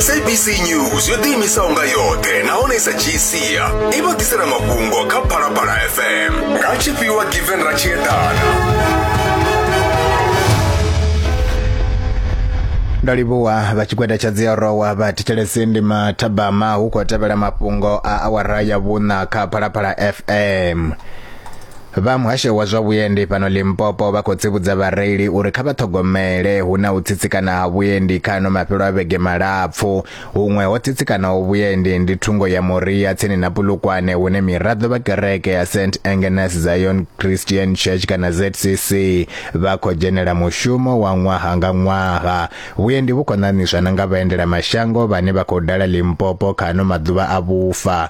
sabc news yo ḓiimisaho nga yoṱhe nahone sa gc i vha ḓisela mafhungo kha phalaphala fm nga tshifhiwa given ra tshi eḓana ndo livhuwa vha tshigwada tsha dziorowa vha thetshelesi ndi mathabama hu khou tevhela mafhungo a awara ya vhuṋa kha phalaphala fm Vha muhasho wa zwa vhuendi fhano Limpopo vha khou tsivhudza vhareili uri kha vha ṱhogomele hu na u tsitsikana ha vhuendi kha ano mafhelo a vhege malapfu. Huṅwe ho tsitsikanaho vhuendi ndi thungo ya Moria tsini na Pulukwane hune miraḓo vha kereke ya St Agnes Zion Christian Church kana ZCC vha khou dzhenela mushumo wa ṅwaha nga ṅwaha. Vhuendi vhu khou ṋaṋiswa na nga vhaendela mashango vhane vha khou dala Limpopo kha ano maḓuvha a vhufa.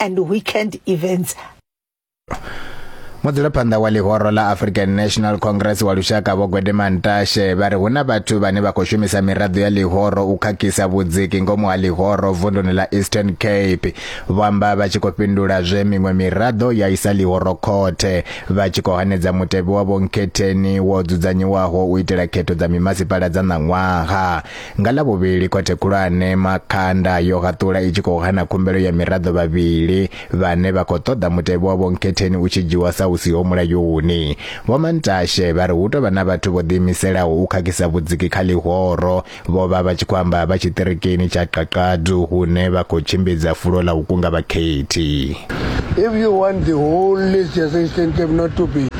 and weekend events mudzulaphanḓa wa ḽihoro ḽa african national congress wa lushaka vho gwedema ntashe vha ri hu na vhathu vhane vha khou shumisa miraḓo ya ḽihoro u khakhisa vhudziki ngomu ha ḽihoro vunduni ḽa eastern cape vho amba vha tshi khou fhindula zwe miṅwe miraḓo ya isa ḽihoro khothe vha tshi khou hanedza mutevhe wa vhonkhetheni wo dzudzanyiwaho u itela khetho dza mimasipala dza ṋaṅwaha Nga ḽa vhuvhili khothe khulwane Makhanda yo haṱula i tshi khou hana khumbelo ya miraḓo vhavhili vhane vha khou ṱoḓa mutevhe wa Vho Nkhetheni u tshi dzhiwa sa u siho mulayoni. Vho Mantashe vha ri hu tou vha na vhathu vho ḓiimiselaho u khakhisa vhudziki kha ḽihoro, vho vha vha tshi khou amba vha tshiṱirikini tsha Qaqadu hune vha khou tshimbidza fulo ḽa u kunga vhakhethi. If you want the whole list as I stand, not to be.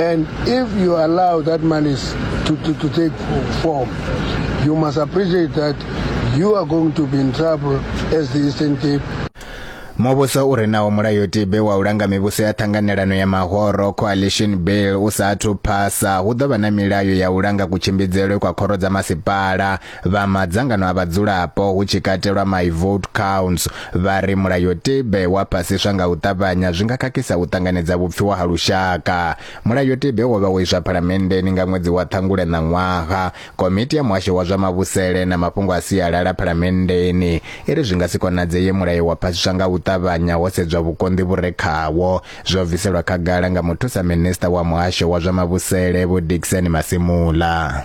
And if you allow that malice to, to, to take form, you must appreciate that you are going to be in trouble as the Eastern Cape muvhuso u re nawo mulayotibe wa u langa mivhuso ya ṱhanganelano ya mahoro coalition bill u sa athu phasa hu ḓo vha na milayo ya u langa kutshimbidzelwe kwa khoro dza masipala Vha madzangano a vhadzulapo hu tshi katelwa My Vote Counts vha ri mulayotibe wa phasiswa nga u ṱavhanya zwi nga khakhisa u ṱanganedza vhupfiwa ha lushaka. Mulayotibe wo vha wo iswa phalamenndeni nga ṅwedzi wa Ṱhangule ṋaṅwaha. Komiti ya Muhasho wa zwa Mavhusele na Mafhungo a Sialala phalamenndeni i ri zwi nga si konadzeye mulayo wa phasiswa nga u ṱavhanya ho sedzwa vhukonḓi vhu re khawo. Zwo bviselwa khagala nga muthusa minisiṱa wa Muhasho wa zwa Mavhusele Vho Dickson Masimula.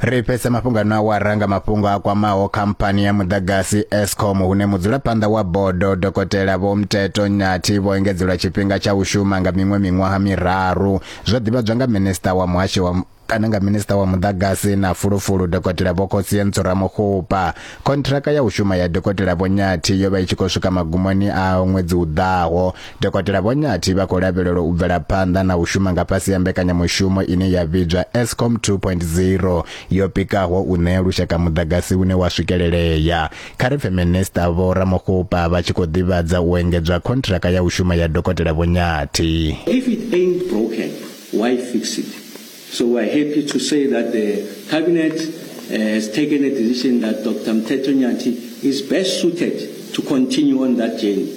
ri fhedza mafhungo ano awara nga mafhungo a kwamaho khamphani ya muḓagasi escom hune mudzulaphanḓa wa bodo dokotela vho mteto nyathi vho engedzelwa tshifhinga tsha u shuma nga miṅwe miṅwaha miraru zwo ḓivhadzwa nga minista wa muhasho wa kana nga minista wa muḓagasi na fulufulu dokotela vho khosie ntsuramuxupa khontraka ya u shuma ya dokotela vho nyathi yo vha i tshi khou swika magumoni a ṅwedzi u ḓaho Dokotela Vho Nyathi vha khou lavhelelwa u bvela phanḓa na u shuma nga fhasi ha mbekanyamushumo ine ya vhidzwa Eskom 2.0 yo pikaho u ṋea lushaka muḓagasi une wa swikelelea. Kha ri pfe Minisiṱa Vho Ramokgopa vha tshi khou ḓivhadza u engedzwa khontraka ya u shuma ya Dokotela Vho Nyathi. If it ain't broken, why fix it? So we're happy to say that the Cabinet uh, has taken a decision that Dr. Mteto Nyati is best suited to continue on that journey.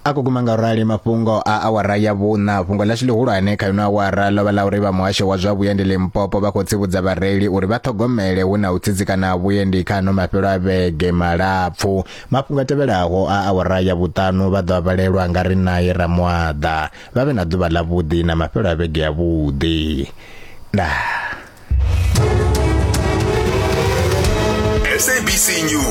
a kho guma nga rali mafhungo a awara ya vhuṋa fhungo ḽashu ḽihulwane kha ino awara ḽo vha ḽa uri vha muhasho wa zwa vhuendi limpopo vha khou tsivhudza vhareili uri vha ṱhogomele hu na u tsitsikana ha vhuendi kha ano mafhelo a vhege malapfu mafhungo a tevhelaho a awara ya vhuṱanu vha ḓo a vhalelwa nga ri naye ramwaḓa vha vhe na ḓuvha ḽa vhuḓi na mafhelo a vhege ya vhuḓi nah SABC News